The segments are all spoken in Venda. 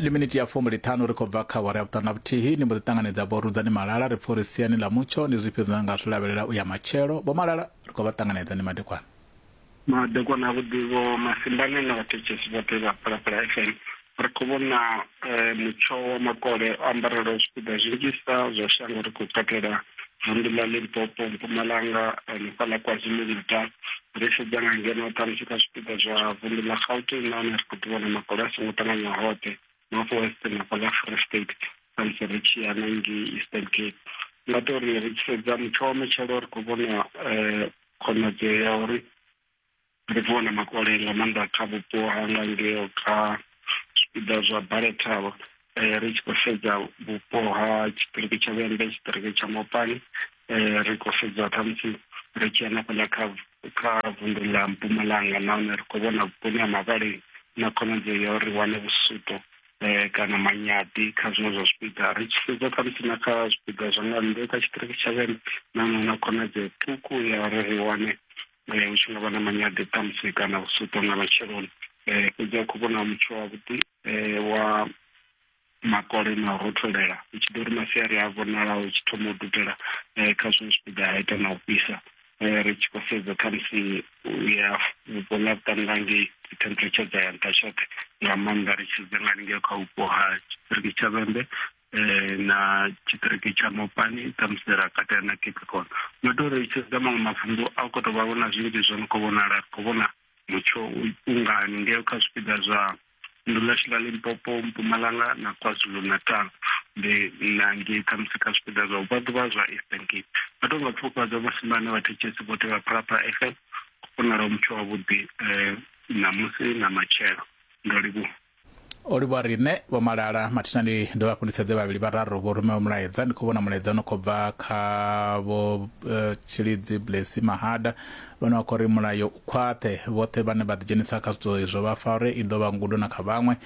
li miniti ya fumbi ṱhanu ri khou bva kha wara ya vhuṱanu na vhuthihi ni mbo ḓi ṱanganedza vho rudzani malala ri pfha uri siani ḽa mutsho ndi zwifhio zwine nga zwi lavhelela u ya matshelo vho malala ri khou vha ṱanganedza ni madekwana madekwana a vhuḓi vho masimbane na vhathetshelesi vhoṱhe vha phalaphala fm ri khou vhona eh, mutsho wa makole o ambarelaho zwipiḓa zwinzhisa zwa shango ri khou katela vunḓu ḽa limpopo mpumalanga hanefha ḽa kwazulu-natal ri sedza nga ngeno ṱhamusi kha zwipiḓa zwa vunḓu ḽa gauteng nahone ri khou ḓi vhona makolo a songo ṱanganya hoṱhe north western hafha ḽa free state khamusi ri tshi ya na ngei eastern cape nga to ri ri tshi sedza mutsho wa matshelo ri khou vhona um khonadzeo ya uri ndi khou vhona makole nga maanḓa kha vhupo hanga ngeo kha zwipiḓa zwa balethavha um ri tshi khou sedza vhupo ha tshiṱiriki tsha vhembe tshiṱiriki tsha mopani um ri khou sedza khamusi ri tshi hanefhaḽa kha kha vundu ḽa mpumalanga nahone ri khou vhona vhuponi ha mavhaleni na khonadzeo ya uri wane vhusuto um kana manyaḓi kha zwiṅwe zwa zwipiḓa ri tshi sedza khamusi na kha zwipiḓa zwa nga nnḓe kha tshiṱiriki tsha vhembe nahone na khonadzeo ṱhukhu ya uri ri wane hu tshi nga vha na manyade ṱhamusi kana vhusuṱo nga matsheloni um fhedzi a khou vhona mutsho wavhuḓi um wa makole na u rotholela hu tshi ḓo ri masiari a vhonala hu tshi thoma u dudela um kha zwiṅwe zwipiḓa ha ita na u fhisa um ri tshi khou sedza khamusi u ya vhupo ḽa vhuṱanga ngei dzi temperature dza ya nṱha tshoṱhe nga maanḓa ri tshi sedza nga lingea kha vhupo ha tshipiriki tsha vhembe eh, na tshiṱiriki tsha mopani ṱhamusi ra katela na capricorn no to ri tshedza maṅwe mavundu a u khou tou vha vhona zwinzhi zwo no khou vhonala ri khou vhona mutsho ungani ngeo kha zwipiḓa zwa nnḓu ḽashu ḽa limpopo mpumalanga na kwazulu natal ndi na ngei ṱhamusi kha zwipiḓa zwa ubva ḓuvha zwa eastern cape vha tou nga pfufhadza vhasimbane vhathetshetsi vhoṱhe vha phalaphala f m vhonala mutsho wavhuḓi um ṋamusi na matshelo ndo livhuwa o livhuwa riṋe vho malala mathina ndi dovha hafhu ndi sedze vhavhili vhararu vho rumewa mulaedza ndi khou vhona mulaedza no khou bva kha vho uh, eh, tshilidzi blesi mahada vhane vha khou ri mulayo u khwaṱhe vhoṱhe vhane vha ḓidzhenisa kha zwithu izwo vha fa uri i ḓo vha ngudo na kha vhaṅwe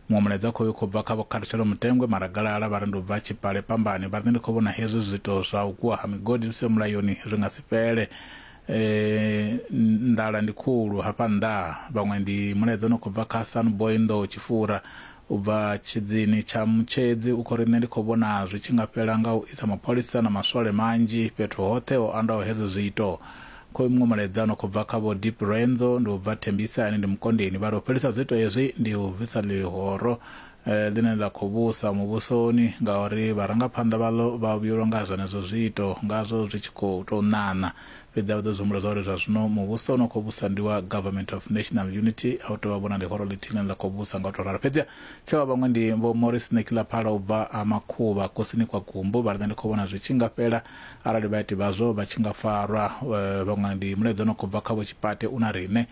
muṅwe mulaedza khoyu khou bva kha vho khathutshelo mutengwe maragalala vha ri ndi u bva tshipale pambani vha ri ndi khou vhona hezwi zwito zwa u kuwa ha migodi zwi siho mulayoni zwi nga si fhele Eeh nḓala ndi khulu hafha nnḓaa vhaṅwe ndi mulaedza u no khou bva kha Sun Boy Nḓou Tshifura u bva tshidzini tsha Mutshedzi u khou ri nṋe ndi khou vhona zwi tshi nga fhela nga u isa mapholisa na maswole manzhi fhethu hoṱhe ho andaho hezwo zwiito. Khoyu muṅwe mulaedza u no khou bva kha Vho Deep Renzo ndi u bva Thembisa ane ndi Mukondeni vha ri u fhelisa zwiito hezwi ndi u bvisa ḽihoro ḽine ḽa khou vhusa muvhusoni ngauri vharangaphanḓa vhaḽo vha vhuyelwa nga zwenezwo zwiito, ngazwo zwi tshi khou tou ṋaṋa. Fhedzi a vha ṱoḓi u humbula zwa uri zwa zwino muvhuso une wa khou vhusa ndi wa Government of National Unity, a hu tou vha vho na ḽihoro ḽithihi ḽine ḽa khou vhusa nga u tou ralo. Fhedziha kha vha vhaṅwe ndi Vho Maurice Nekilaphala u bva Ha Makhuvha, kusini kwa Gumbu, vha ri, Nṋe ndi khou vhona zwi tshi nga fhela arali vhaiti vhazwo vha tshi nga farwa. Vhaṅwe ndi mulaedza u no khou bva kha Vho Tshipate u na riṋe.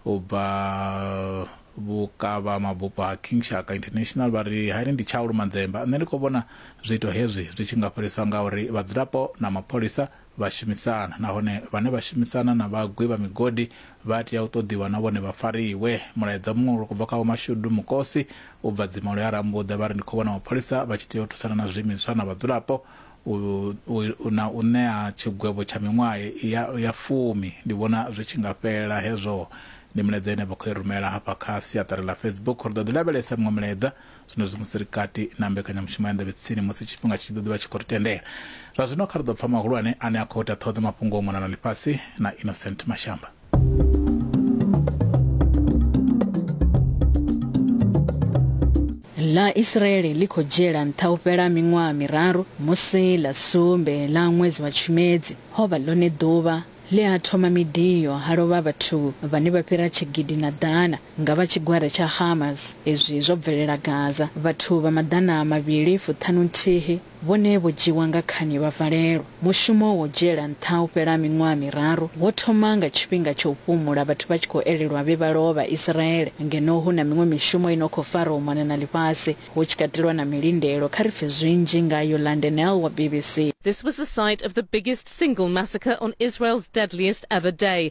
u bva vhukavha mabufho ha king shaka international vha ri hani ndi tshaulu manzemba nṋe ndi khou vhona zwiito hezwi zwi tshi nga fheliswa nga uri vhadzulapo na mapholisa vha shumisana nahone vhane vha shumisana na vhagwi vha migodi vha tea u ṱoḓiwa na vhone vha fariwe mulaedza muṅwe uri kubva kha vhomashudu mukosi u bva dzimolo ya rambuḓa vha ri ndi khou vhona mapholisa vha tshi tea u thusana na zwiimiswa na vhadzulapo u, u, u, na u ṋea tshigwevho tsha miṅwaha ya, ya fumi. Ndi vhona zwi tshi nga fhelela hezwo. Ndi milaedza ine vha khou i rumela hafha kha siaṱari ḽa Facebook. Ri ḓo ḓi lavhelesa miṅwe milaedza zwenezwi musi ri kati na mbekanyamushumo ya Nḓevhe Tsini musi tshifhinga tshi tshi ḓo ḓi vha tshi khou ri tendela. Zwa zwino kha ri ḓo pfa mahulwane ane a khou ita ṱhoho dza mafhungo u mona na ḽifhasi na Innocent Mashamba. ḽa israele ḽi khou dzhiela nṱha u fhela miṅwaha miraru musi ḽa sumbe ḽa ṅwedzi wa tshimedzi ho vha ḽone ḓuvha ḽe ha thoma midiyo ha lovha vhathu vhane vha fhira tshigidi na ḓana nga vha tshigwada tsha hamas izwi zwo bvelela gaza vhathu vha maḓana mavhili fuṱhanu nthihi Vhone vho dzhiiwa nga khani vha valelwa. Mushumo wa u dzhiela nṱha u fhela miṅwaha miraru wo thoma nga tshifhinga tsha u fhumula vhathu vha tshi khou elelwa vhe vha lovha. Isiraele ngeno hu na miṅwe mishumo i no khou fara u mona na ḽifhasi, hu tshi katelwa na milindelo. Kha ri pfe zwinzhi nga Yolande Nell wa BBC. This was the site of the biggest single massacre on Israel's deadliest ever day,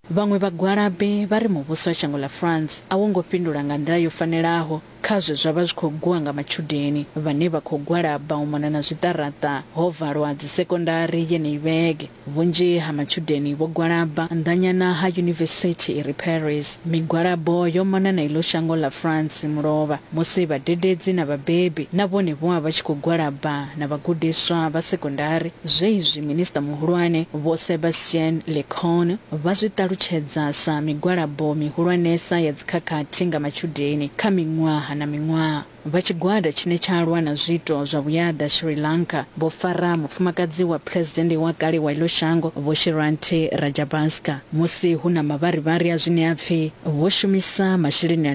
Vhaṅwe vhagwalabi vha ri muvhuso wa shango ḽa France a wo ngo fhindula nga nḓila yo fanelaho kha zwe zwa vha zwi khou gwiwa nga matshudeni vhane vha khou gwalaba u mona na zwiṱaraṱa ho valwa dzisekondari yeneyi vhege. Vhunzhi ha matshudeni vho gwalaba nnḓanyana ha yunivesithi i re Paris. Migwalabo yo mona na iḽo shango ḽa France mulovha musi vhadededzi na vhabebi na vhone vho vha vha tshi khou gwalaba. na vhagudiswa vha sekondari, zwe izwi Minisiṱa Muhulwane Vho Sebastian Lecornu vha zwi ṱalutshedza sa migwalabo mihulwanesa ya dzikhakhathi nga matshudeni kha miṅwaha na miṅwaha. Vha tshigwada tshine tsha lwa na zwiito zwa vhuyaḓa Sri Lanka vho fara mufumakadzi wa Phresidennde wa kale wa iḽo shango Vho Shirante Rajabhaska musi hu na mavharivhari a zwine a pfi vho shumisa masheleni a